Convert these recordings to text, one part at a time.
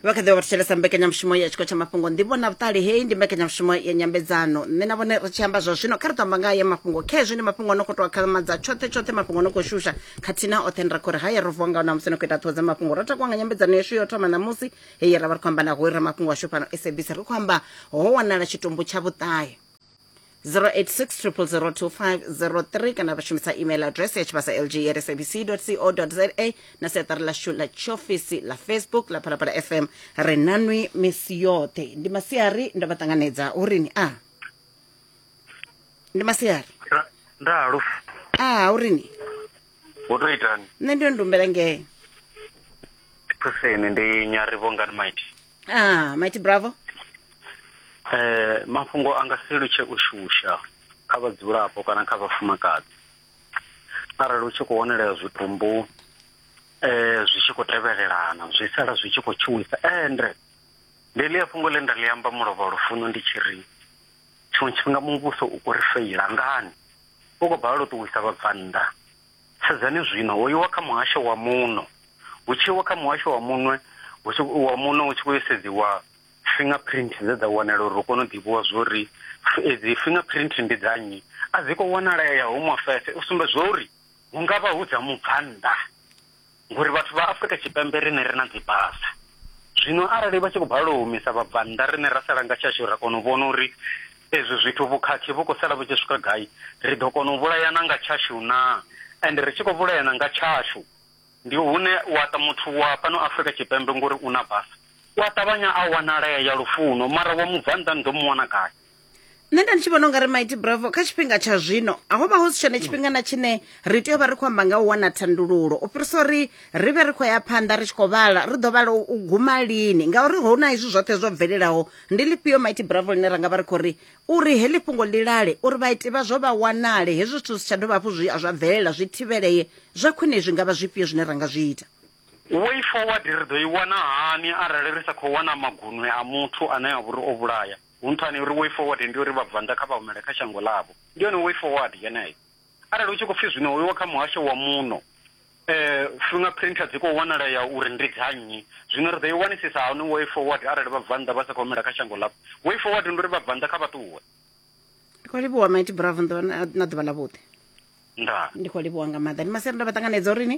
vha kha ḓi vha thetshelesa mbekanyamushumo ya tshiko tsha mafhungo ndivho na vhuṱali hei ndi mbekanyamushumo ya nyambedzano nṋe na vhone ri tshi amba zwa zwino kha ri tamba ngayo mafhungo khezwi ndi mafhungo no khou tou akhamadza tshoṱhe tshoṱhe mafhungo no khou shusha khathihi na oṱhe ndi ra khou ri haya ro vuwa ngaho na musi no khou ita ṱhoho dza mafhungo ro takuwa nga nyambedzano yashu yo thoma ṋamusi heyi ra vha ri khou amba na hoi ra mafhungo ashu fhano sabc ri khou amba ho wanala tshitumbu tsha vhuṱahe 0860002503 kana vha shumisa email address ya tshivhasa lg ya sabc co za na seṱari ḽashu ḽa tshiofisi ḽa facebook ḽa phalaphala fm ri nanwi misi yoṱhe ndi masiari ndo vha ṱanganedza urini a ndi masiari Nda- ndalo a urini wo to itani nṋe ndi yo ndumbela ngee phuseni ndi nyarivho ngani maiti ah mighty bravo eh mafhungo anga si lutshe u shusha kha vhadzulapo kana kha vhafumakadzi arali u tshi khou wanelea zwitumbu eh zwi tshi khou tevhelelana zwi sala zwi tshi khou tshuwisa ende ndi ḽi fhungo ḽe nda ḽi amba mulovha lufuno ndi tshi ri tshiṅwe tshifhinga muvhuso u khou ri feila ngani u khou balelwa u ṱuwisa vhabvannḓa Sedzani zwino, ho iwa kha muhasho wa muno, hu tshi iwa kha muhasho wa munwe, hu tshi, wa muno hu tshi khou yo sedziwa fingerprint dze dza wanala uri hu kone u ḓivhiwa zwo ri f- edzi fingerprint ndi dza nnyi. A dzi khou wanalea ya Home Affairs u sumbedzwa uri hu nga vha hu dza mubvannḓa. Ngori vhathu vha Afrika Tshipembe riṋe ri na dzibasa. Zwino arali vha tshi khou balelwa u humisa vhabvannḓa riṋe ra sala nga tshashu ra kona u vhona uri ezwi zwithu vhukhakhi vhu khou sala vhu tshi swika gai, ri ḓo kona u vhulayana nga tshashu naa? Ende ri tshi khou vhulayana nga tshashu ndi hune wa ta muthu wa fhano Afrika Tshipembe ngori u na basa u a ṱavhanya a wanalea ya lufuno mara wa mubvannḓa ni ḓo mu wana gai? nṋe nda ndi tshi vhona ungari mighty bravo kha tshifhinga tsha zwino a ho vha ho si tshone tshifhinga na tshine ri tea u vha ri khou amba nga u wana thandululo u fhirisa uri ri vhe ri khou ya phanḓa ri tshi khou vhala ri ḓo vhala u guma lini ngauri ho na izwi zwoṱhe zwo bvelelaho ndi lifhio mighty bravo ḽine ra nga vha ri khou ri uri heḽi fhungo ḽi lale uri vhaiti vha zwo vha wanale hezwi zwithu zwi tsha dovha hafhu zwi zwa bvelela zwi thivhelee zwa khwine zwi nga vha zwifhio zwine ra nga zwi ita way forward ri ḓo i wana hani arali ri sa khou wana magunwe a muthu ane a vhori o vhulaya Hu nṱhani ha uri way forward ndi ya uri Vhabvannḓa kha vha humele kha shango ḽavho. Ndi yone way forward yeneyo. Arali hu tshi khou pfi zwino hu iwa kha muhasho wa muno, finger print dzi khou wanalea uri ndi dza nnyi, zwino ri ḓo i wanisisa hani way forward arali Vhabvannḓa vha sa khou humela kha shango ḽavho? Way forward ndi uri Vhabvannḓa kha vha ṱuwe. Ndi khou livhuwa Mighty Bravo na ḓuvha ḽavhuḓi. Ndaa. Ndi khou livhuwa nga maanḓa. Ndi masiari nda vha ṱanganedza uri ni.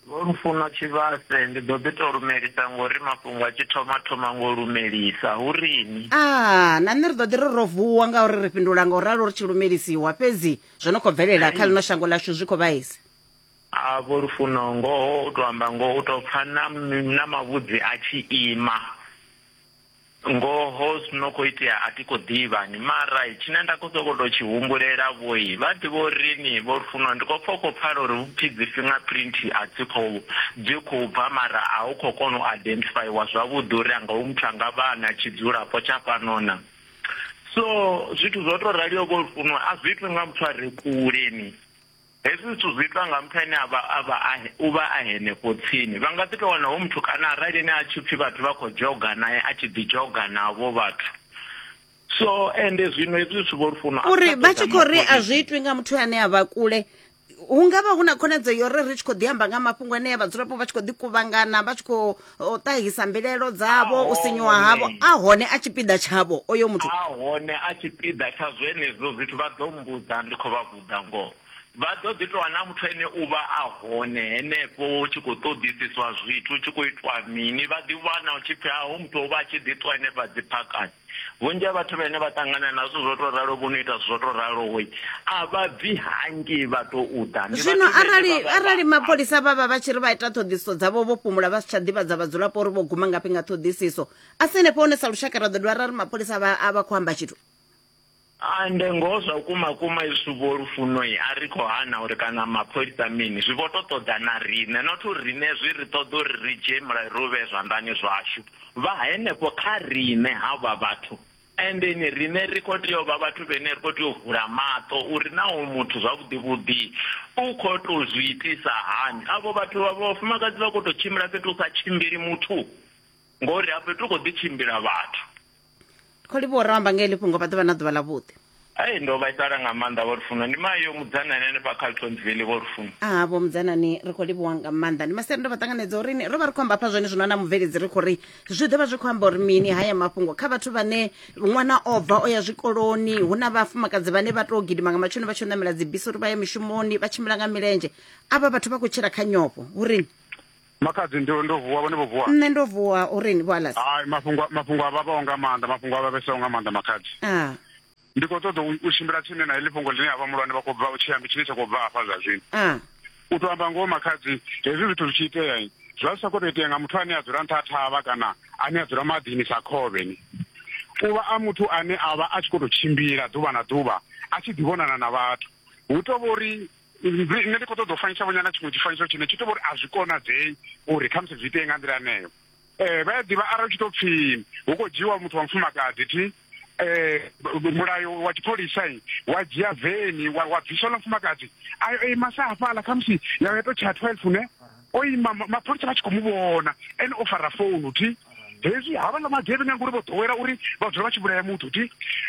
Vho Lufuno Tshivhase, Ndi ḓo ḓi tou lumelisa ngori mafhungo a tshi thoma thoma ngo lumelisa. Hu rini? A, na nṋe ri ḓo ḓi ri ro vuwa ngauri ri fhindula nga u ralo ri tshi lumelisiwa. Fhedzi zwo no khou bvelela kha ḽino shango ḽashu zwi khou vhaisa. A, Vho Lufuno, ngoho u tou amba ngoho u tou pfa na na mavhudzi a tshi ima. Ngoho zwi no khou itea a thi khou ḓivha ni, mara tshine nda khou sokou tou tshi humbulela vho, vha ḓivha uri ni vho funwa. Ndi khou pfa u khou pfala uri hu pfi dzi fingerprint a dzi khou dzi khou bva mara a hu khou kona u identifyiwa zwavhuḓi uri anga hoyu muthu a nga vha a na tshidzulapo tsha fhano na. So zwithu zwo tou raliho vho funwa a zwi itwi nga muthu a re kule ni. Hezwi zwithu zwi itwa nga muthu ane a vha a vha a u vha a henefho tsini. Vha nga ḓi tou wana hoyu muthu kana arali ene a tshi pfi vhathu vha khou dzhoga nae a tshi ḓi dzhoga navho vhathu. So ende zwino hezwi zwithu vho Lufuno a uri vha tshi khou ri a zwi itwi nga muthu ane a vha kule hu nga vha hu na khonadzeo yo ri ri tshi khou ḓi amba nga mafhungo anea vhadzulapo vha tshi khou ḓi kuvhangana vha tshi khou o ṱahisa mbilaelo dzavho u sinyuwa havho a hone a tshipiḓa tshavho oyo muthu a hone a tshipiḓa tsha zwenezwo zwithu vha ḓo mbudza ndi khou vha vhudza ngoho vha ḓo ḓi tou na muthu ene u vha a hone henefho u tshi khou ṱoḓisiswa zwithu u tshi khou itwa mini vha ḓi wana u tshi pfhi a hu muthu o vha a tshi ḓi ṱwa henefha dziphakani Vhunzhi ha vhathu vhane vha ṱangana na zwithu zwo tou ralo vho no ita zwithu zwo tou raloho a vha bvi hangei vha tou ḓa. Ndi Zwino vhathu vhane arali vha vha vha arali mapholisa vha vha vha tshi ri vha ita ṱhoḓisiso dzavho vho fhumula vha si tsha ḓivhadza vhadzulapo uri vho guma ngafhi nga ṱhoḓisiso a si henefho hone sa lushaka ra ḓo dovha ra ri mapholisa a vha a vha khou amba tshithu Hai nde ngoho zwa vhukuma kuma izwi vho Lufuno a ri khou hana uri kana mapholisa mini zwi vho to ṱoḓa na riṋe not uri riṋe zwi ri ṱoḓa uri ri dzhie mulayo ri u vhee zwanḓani zwashu vha henefho kha riṋe havha vhathu endeni riṋe ri khou tea u vha vhathu vhene ri khou tea u vula maṱo uri na hoyu muthu zwavhuḓi vhuḓi u khou to zwi itisa hani avho vhathu vha vhafumakadzi vha khou to tshimbila fhethu u sa tshimbili muthu ngori hafho fhethu hu khou ḓi tshimbila vhathu. khou livhuwa uri amba ngeli fhungo vha ḓovha na ḓuvha ḽa vhuḓi ai ndo vhaisala nga maanḓa vho lufuno ndi mayo mudzanani hanefha kha ltonsville vho lufuno a vho mudzanani ri khou livhuwa nga maanḓa ndi masere ndo vha ṱanganedza uri ro vha ri khou amba hafha zwone zwino na mubveledzi ri khou ri zwi ḓo vha zwi khou amba uri mini haya mafhungo kha vhathu vhane ṅwana o bva o ya zwikoloni hu na vhafumakadzi vhane vha tou gidima nga matshoni vha tshi ṋamela dzibisi uri vha ye mishumoni vha tshimbila nga milenzhe avha vhathu vha khou tshila kha nyofho uri Makhadzi ndo ndo vuwa vhone vho vuwa. Nṋe ndo vuwa uri ni vhalas. Hai mafhungo mafhungo a vhavhaho nga maanḓa mafhungo a vhavesaho nga maanḓa makhadzi. Ah. Ndi khou ṱoḓa u tshimbila tsini na heḽi fhungo ḽine ha vha mulwane vha khou bva u tshi ambi tshine tsha khou bva hafha zwa zwino. Ah. U tou amba ngoho makhadzi hezwi zwithu zwi tshi itea zwa zwi sa khou tou itea nga muthu ane a dzula nṱha ha thavha kana ane a dzula maḓini sa khovhe ni. U vha a muthu ane a vha a tshi khou tou tshimbila ḓuvha na ḓuvha a tshi ḓivhonana na vhathu. Hu tou vha uri nṋe ndi khou ṱoḓa u fanyisa vhonyana tshiṅwe tshifanyiso tshine tshi to vhori a zwi konadzei uri khamusi zwi itee nga nḓila aneyo um eh, vha ya ḓivha arali tshi to pfi hu khou dzhiiwa muthu wa mufumakadzi thi um mulayo wa tshipholisa wa dzhia veni wa bvisa ḽa mufumakadzi ayo ei masa hafhaḽa khamusi yawe ya to tsha twelve ne o ima ma- mapholisa vha tshi khou mu vhona ene o fara founu thi hezwi havhaḽa magevhenga ngori vho ḓowela uri vha dzula vha tshi vhulaya muthu thi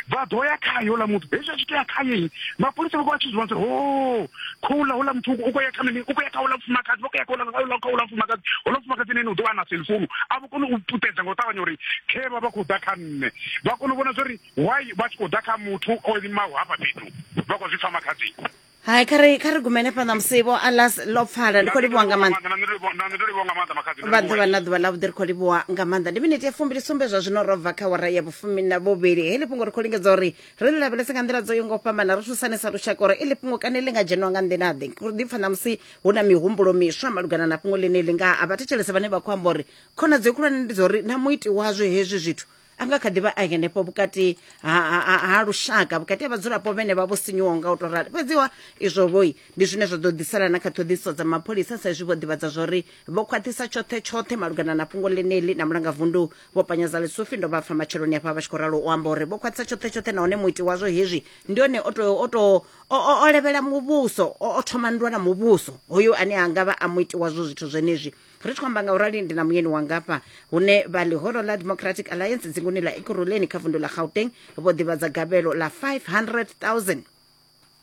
vha ḓo ya khaye houḽa muthu hezwi a tshi tou ya khaye mapholisa vha vha tshi zwi vhona ho khouḽa houḽa muthu u khou ya kha mini u khou ya kha houḽa mufumakadzi vha khou ya kha houḽa- houḽa kha houḽa mufumakadzi houḽa mufumakadzi nene u ḓo vha na cellphone a vho kone u puṱedza nga u ṱavhanya uri khevha vha khou ḓa kha nṋe vha kone u vhona zwa uri why vha tshi khou ḓa kha muthu o limaho hafha fhethu vha khou zwi pfa makhadzini hai kha ri kha ri gumele fhaḽa musi vho alas ḽo pfala ndi khou livhuwa nga maanḓa nṋe ndi livhuwa- nṋe ndi livhuwa nga maanḓa makhadzi ni vha livhuwe. ḓuvha na ḓuvha ḽavhuḓi ri khou livhuwa nga maanḓa ndi miniti ya fumbili sumbe zwa zwino ro bva kha wara ya vhufumi na vhuvhili heḽi fhungo ri khou lingedza uri ri ḽi lavhelese nga nḓila dzo yo ngo fhambana ri thusane sa lushaka uri iḽi fhungo kane ḽi nga dzheniwa nga nḓila-ḓe ri ḓipfa ṋamusi hu na mihumbulo miswa malugana na fhungo ḽine ḽi nga a vhathetshelese vhane vha khou amba uri khonadzeo khulwane ndi dza uri na muiti wazwo hezwi zwithu a nga kha ḓi vha a henefho vhukati ha, ha, ha, ha lushaka vhukati ha vhadzulapo vhene vha vho sinyuwaho nga u to rali fhedziwa izwo vhoi ndi zwine zwa ḓo ḓisela na kha ṱhoḓisiso dza mapholisa sa izwi vho ḓivhadza zwori vho khwaṱhisa tshoṱhe tshoṱhe malugana na fhungo ḽeneli na mulanga vundu vho panyadza lisufi ndo vha pfa matsheloni afha vha tshi khou ralo u amba uri vho khwaṱhisa tshoṱhe tshoṱhe nahone muiti wazwo hezwi ndi one o to o to o levhela muvhuso o thoma nndwa na muvhuso hoyo ane a nga vha a muiti wazwo zwithu zwenezwi ri tshi khou amba nga u rali ndi na muyeni wanga fha hune vha ḽihoro ḽa democratic alliance dzinguni ḽa ekuruleni kha vundu ḽa gauteng vho ḓivhadza gavhelo ḽa 500000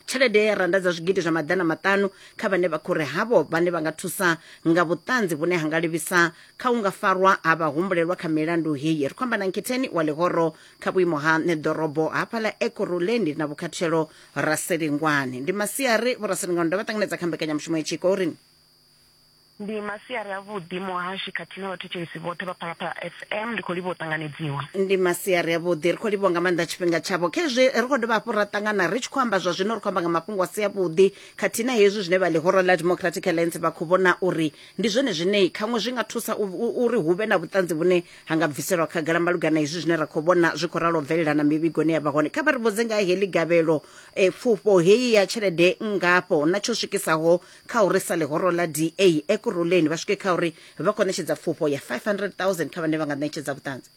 tshelede ya randa dza zwigidi zwa maḓana maṱanu kha vhane vha khou ri havho vhane vha nga thusa nga vhuṱanzi vhune ha nga livhisa kha u nga farwa ha vhahumbulelwa kha milandu heyi ri khou amba na nkhetheni wa ḽihoro kha vhuimo ha ṋeḓorobo hafha ḽa ekuruleni na vhukhathelo raselingwane ndi masiari vho raselingwane ndo vha ṱanganedza kha mbekanyamushumo ya tshiko uri Ndi masiari a vhuḓi muhashi khathihi na vhathetshelesi vhoṱhe vha Phalaphala FM ndi khou livhuwa u ṱanganedziwa. Ndi masiari a vhuḓi ri khou livhuwa nga maanḓa tshifhinga tshavho khezwi ri khou dovha hafhu ra ṱangana ri tshi khou amba zwa zwino ri khou amba nga mafhungo a si a vhuḓi khathihi na hezwi zwine vha ḽihoro ḽa Democratic Alliance vha khou vhona uri ndi zwone zwine khaṅwe zwi nga thusa uri hu vhe na vhuṱanzi vhune ha nga bviselwa khagala malugana hezwi zwine ra khou vhona zwi khou ralo bvelela na mivhigoni ya vha hone kha vha ri vhudze nga heḽi gavhelo e, pfufho heyi ya tshelede ngafho na tsho swikisaho kha uri sa ḽihoro ḽa DA Ekurhuleni vha swike kha uri vha khou ṋetshedza pfufho ya 500000 kha vhane vha nga ṋetshedza vhuṱanzi.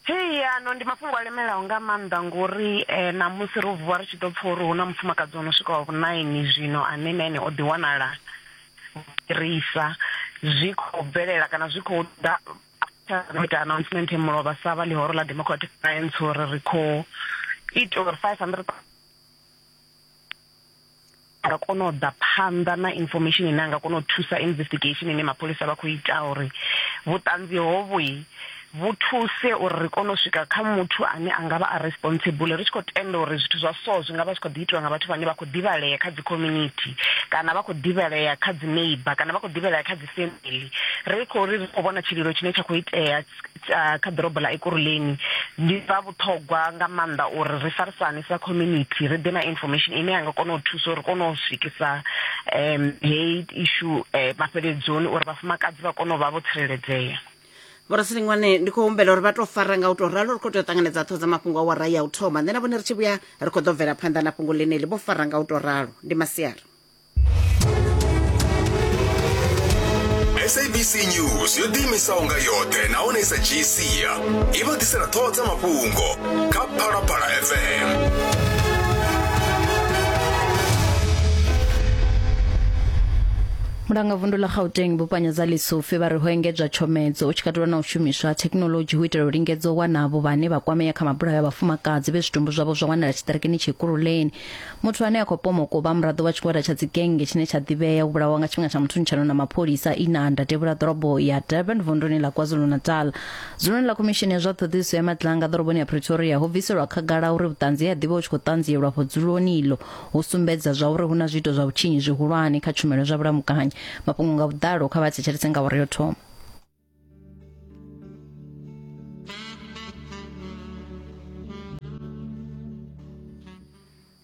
Hei, ano ndi mafhungo a lemelaho nga maanḓa ngori ṋamusi ro vuwa ri tshi ḓo pfa uri hu na mufumakadzi o no swika wa vhunaini zwino ane na ene o ḓi wanala fhirisa zwi khou bvelela kana zwi khou ḓa no ita announcement e mulovha sa vha ḽihoro ḽa Democratic Alliance uri ri khou ita uri 500 ra kona u ḓa phanḓa na information ine anga kona u thusa investigation ine mapholisa vha khou ita uri vhuṱanzi hovhu vhu thuse uri ri kone u swika kha muthu ane a ngavha a responsible ri tshi khou tenda uri zwithu zwa so zwi ngavha zwi khou ḓi itiwa nga vhathu vhane vha khou ḓivhalea kha dzi community kana vha khou ḓivhalea kha dzi neighbor kana vha khou ḓivhalea kha dzi family ri khou ri khou vhona tshililo tshine tsha khou itea kha ḓorobo ḽa Ekurhuleni ndi zwa vhuṱhogwa nga maanḓa uri ri farisane sa community ri ḓe na information ine ya nga kona u thusa uri kone u swikisa um hei ishu um eh, mafheledzoni uri vhafumakadzi vha kone u vha vho tsireledzea vhorasilinwane ndi khou humbela uri vha tou fara nga u tou ralo ri khou tea u ṱanganedza ṱho dza mafhungo a wara ya u thoma nṋe na vhone ri tshi vhuya ri khou ḓo bvela phanḓa na fhungo ḽeneli vho fara nga u tou ralo ndi masiari sabc news yo ḓiimisaho nga yoṱhe nahone i sa dzhii sia i vha ḓisela ṱhoho dza mafhungo kha phalaphala fm mulanga vundu ḽa gauteng vhupanya dza lisufi vha ri ho engedzwa tshomedzo u tshi katelwa na u shumiswa ha thekhinoḽodzhi hu itela u lingedza u wana avho vhane vha kwamea kha mabulayo a vhafumakadzi vhe zwitumbu zwavho zwa wanala tshiṱirikini tshikululeni muthu ane a khou pomoka u vha muraḓo wa tshigwada tsha dzigenge tshine tsha ḓivhea u vhulawa nga tshifhinga tsha muthunutshano na mapholisa inanda tevhula ḓorobo ya durban vunduni ḽa kwazulu-natal dzuloni ḽa khomishini ya zwa ṱhoḓisiso ya matlanga ḓoroboni ya pretoria ho bviselwa khagala uri vhuṱanzi he a ḓivha u tshi khou ṱanzielwa afho dzuloni iḽo ho sumbedza zwa uri hu na zwiito zwa vhutshinyi zwihulwane kha tshumelo zwa vhulamukanyi mafhungo nga vhuḓalo kha vha thetshelese nga awara yo thoma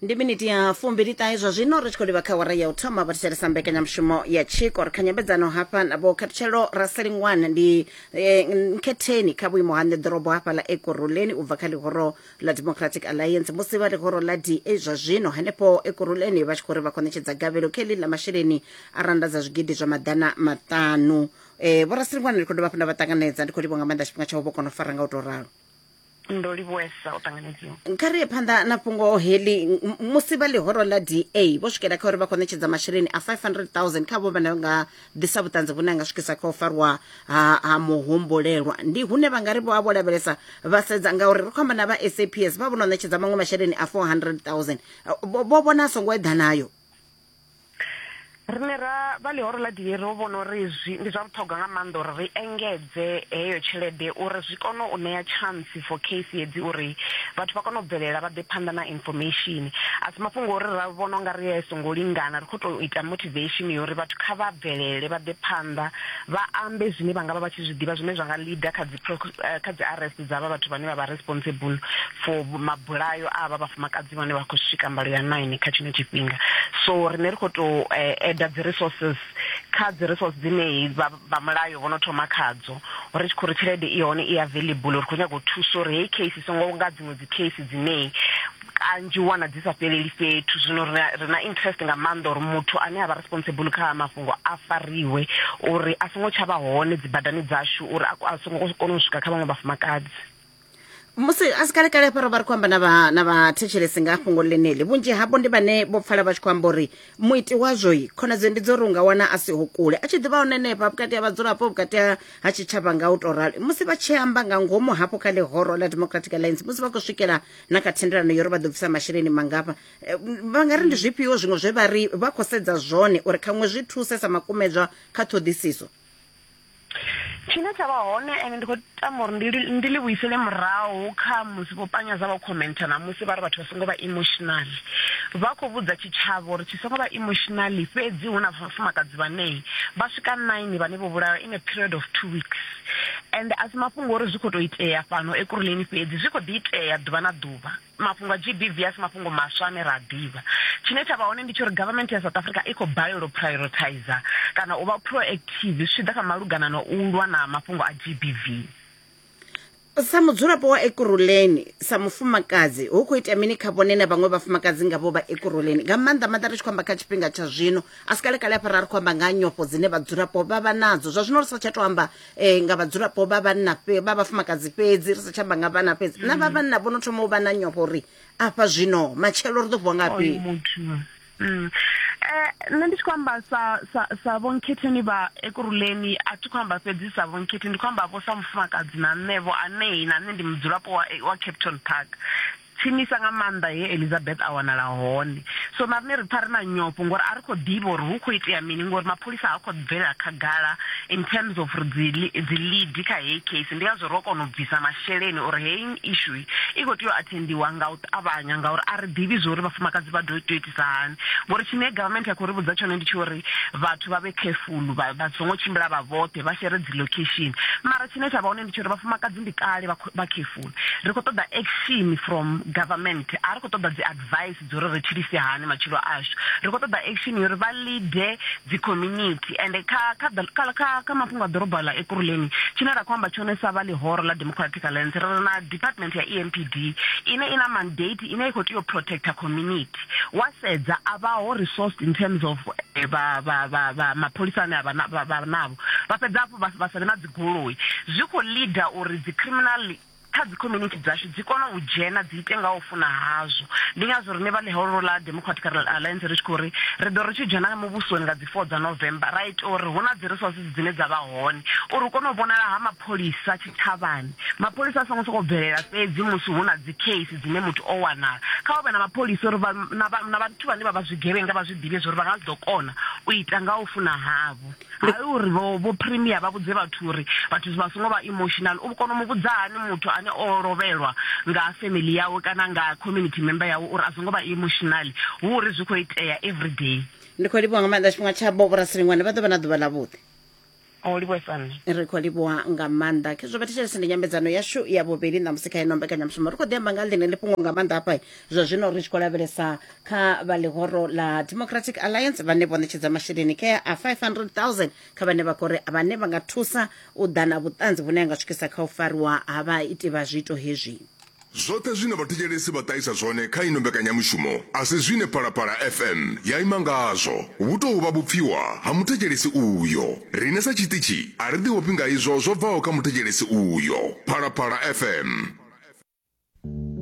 ndi miniti ya fumbili ṱahe zwa zwino ri tshi khou livha kha wara ya u thoma vhathetshelesa mbekanyamushumo ya tshiko ri kha nyambedzano hafha na vho khathutshelo raselingwana ndi eh, nkhetheni kha vhuimo ha nḓeḓorobo hafha ḽa ekuruleni u bva kha ḽihoro ḽa democratic alliance musi vha ḽihoro ḽa da zwa zwino henefho ekuruleni vha tshi khou ri vha khou ṋetshedza gavhelo kha heḽi ḽa masheleni a randa dza zwigidi zwa maḓana maṱanu um vhorasilikwane ndi khou dovha hafhu nda vha ṱanganedza ndi khou livho nga maanḓa tshifhinga tsha u vho kona u fara nga u tou ralo ndo livhuesa u ṱanganedziwa kha ri ye phanḓa na fhungo heḽi M- musi vha ḽihoro ḽa da vho swikela kha uri vha khou ṋetshedza masheleni a 500 000 kha vho vhane vha nga ḓisa vhuṱanzi vhune a nga swikisa kha u farwa ha, ha muhumbulelwa ndi hune vha nga ri vho a vho lavhelesa vha sedza ngauri ri khou amba na vha saps vha vho no ṋetshedza maṅwe masheleni a 400 000 vho vho vhona a songo eḓanayo rine ra vha ḽihoro ḽa diye ro vhona uri zwi ndi zwa vhuṱhogwa nga maanḓa uri ri engedze heyo tshelede uri zwi kone u ṋea chance for case hedzi uri vhathu vha kone u bvelela vha ḓe phanḓa na information a si mafhungo uri ra vhona unga ri a songo lingana ri khou tou ita motivation yori vhathu kha vha bvelele vha ḓe phanḓa vha ambe zwine vha nga vha vha tshi zwi ḓivha zwine zwa nga leader kha Eh, kha dzi arrest dza vha vhathu vhane vha vha responsible for mabulayo a vha vhafumakadzi vhane vha khou swika mbalo ya nine kha tshino tshifhinga so rine ri khou tou eda eh, dzi resources kha dzi resource dzine vha mulayo vho no thoma khadzo ri tshi khou ri tshelede i hone i available ri khou nyanga u thusa uri heyi case i songo nga dziṅwe dzi case dzine kanzhi u wana dzi sa fheleli fhethu zwino ri na- ri na interest nga maanḓa uri muthu ane a vha responsible kha ha mafhungo a fariwe uri a songo tsha vha hone dzibadani dzashu uri a ko- a songo kona u swika kha vhaṅwe vhafumakadzi musi a si kale kale hafha ro vha ri khou amba na vha- na vhathetshelesi nga fhungo ḽeneḽi vhunzhi havho ndi vhane vho pfala vha tshi khou amba uri muiti wazwoi khonadzeo ndi dzo uri u nga wana a siho kule a tshi ḓivha hone henefha vhukati ha vhadzulapo vhukati ha ha tshitshavha nga u tou rali musi vha tshi amba nga ngomu hafho kha ḽihoro ḽa democratic alliance musi vha khou swikela na kha thendelano yo ri vha ḓo bvisa masheleni mangafha Eh, m- vha nga ri ndi zwifhio zwiṅwe zwe vha ri vha khou sedza zwone uri khaṅwe zwi thuse sa makumedzwa kha ṱhoḓisiso tshine tsha vha hone ende ndi khou tama uri ndi li- ndi li vhuisele murahu kha musi vho panyaza vha khomenta na musi vha ri vhathu vha songo vha emotional vha khou vhudza tshitshavha uri tshi songo vha emotional fhedzi hu na vhafumakadzi vhanei vha swika nine vhane vho vhulawa in a period of two weeks And a si mafhungo ori zwi khou tou itea fhano Ekurhuleni fhedzi, zwi khou ḓi itea ḓuvha na ḓuvha. Mafhungo a GBV a si mafhungo maswa ane ra a ḓivha. Tshine tsha vha hone ndi tsha uri government ya South Africa i khou balelwa u prioritizer kana u vha proactive zwi tshi ḓa kha malugana na u lwa na mafhungo a GBV. Sa mudzulapo wa Ekurhuleni, sa mufumakadzi, hu khou itea mini kha vhone na vhaṅwe vhafumakadzi nga vho vha Ekurhuleni, nga maanḓa maanḓa ri tshi khou amba kha tshifhinga tsha zwino a si kalekale afha ra ri khou amba nga ha nyofho dzine vhadzulapo vha vha nadzo zwa zwino ri sa tsha to amba um nga vhadzulapo vha vhanna vha vhafumakadzi fhedzi ri sa tsha amba nga vhana fhedzi na vha mm. vhanna vho no thoma u vha na nyofho uri afha zwino matshelo ri ḓo vuwa ngafhi mm. eh, nṋe ndi tshi khou amba sa sa sa vhonkhetheni vha ekuruleni a thi khou amba fhedzi sa vhonkhethe ndi khou amba vho sa mufumakadzi na nṋevho anei na nṋe ndi mudzulapo wa wa capton park tsinisa nga maanḓa he Elizabeth a wanala hone. So na riṋe ri pfa ri na nyofho ngori a ri khou ḓivha uri hu khou itea mini ngori mapholisa ha khou bvela khagala in terms of ri dzi dzi lead kha heyi case ndi ngazwo ro kona u bvisa masheleni uri heyi issue i khou tea u attendiwa nga u ṱavhanya ngauri a ri ḓivhi zwo uri vhafumakadzi vha do tea u itisa hani ngori tshine government ya khou ri vhudza tshone ndi tsho uri vhathu vha vhe careful vha vha songo tshimbila vha vhoṱhe vha shere dzi location mara tshine tsha vha hone ndi tsho uri vhafumakadzi ndi kale vha careful Ri khou ṱoḓa action from government, a ri khou ṱoḓa dzi advice dza uri ri tshilise hani matshilo ashu. Ri khou ṱoḓa action ya uri vha leader dzi community and kha kha kha kha kha mafhungo a ḓorobo ḽa Ekurhuleni tshine ra khou amba tshone sa vha ḽihoro ḽa Democratic Alliance ri na department ya EMPD ine ina mandate ine i khou tea u protector community. Wa sedza a vha ho resourced in terms of vha vha vha mapholisa ane a vha navho vha fhedza hafhu vha sa vhe na goloi zwi khou ḽida uri dzi criminal kha dzi community dzashu dzi kone u dzhena dzi ite nga u funa hazwo ndi ngazwo rine vha ḽihoro ḽa democratic alliance ri tshi khou ri ri ḓo ri tshi dzhena muvhusoni nga dzi 4 dza november ra ita uri hu na dzi resources dzine dza vha hone uri u kone u vhonala ha mapholisa tshitshavhani mapholisa a songo sokou bvelela fhedzi musi hu na dzi case dzine muthu o wanala kha hu vhe na mapholisa uri na vhathu vhane vha vha zwigevhenga vha zwi ḓivhe zwa uri vha nga zwi ḓo kona u ita nga u funa havho hai uri vho vho premier vha vhudze vhathu uri vhathu vha songo vha emotional u kona u mu vhudza hani muthu ane o lovhelwa nga family yawe kana nga community member yawe uri a songo vha emotional hu uri zwi khou itea every day ndi khou livhuwa nga maanḓa tshifhinga tsha boborasiliṅwane vha ḓo vha na ḓuvha ḽa vhuḓi o livhuesane ri khou livhuwa nga maanḓa khezwo vha thetshelese ndi nyambedzano yashu ya vhuvhili ṋamusi kha ino mbekanyamushumo ri khou ḓi amba nga ḽine ḽi fhungo nga maanḓa hafha zwa zwino ri tshi khou lavhelesa kha vha ḽihoro ḽa democratic alliance vhane vho ṋetshedza masheleni kea a 500000 kha vhane vha khou ri vhane vha nga thusa u ḓa na vhuṱanzi vhune ha nga swikisa kha u fariwa ha vhaiti vha zwiito hezwi Zwoṱhe zwine vhathetshelesi vha ṱahisa zwone kha ino mbekanyamushumo a si zwine Phalaphala FM ya ima ngazwo. Vhu tou vha vhupfiwa ha muthetshelesi uyo. Riṋe sa tshiṱitshi a ri ḓiofhi nga izwo zwo bvaho kha muthetshelesi uyo. Phalaphala FM.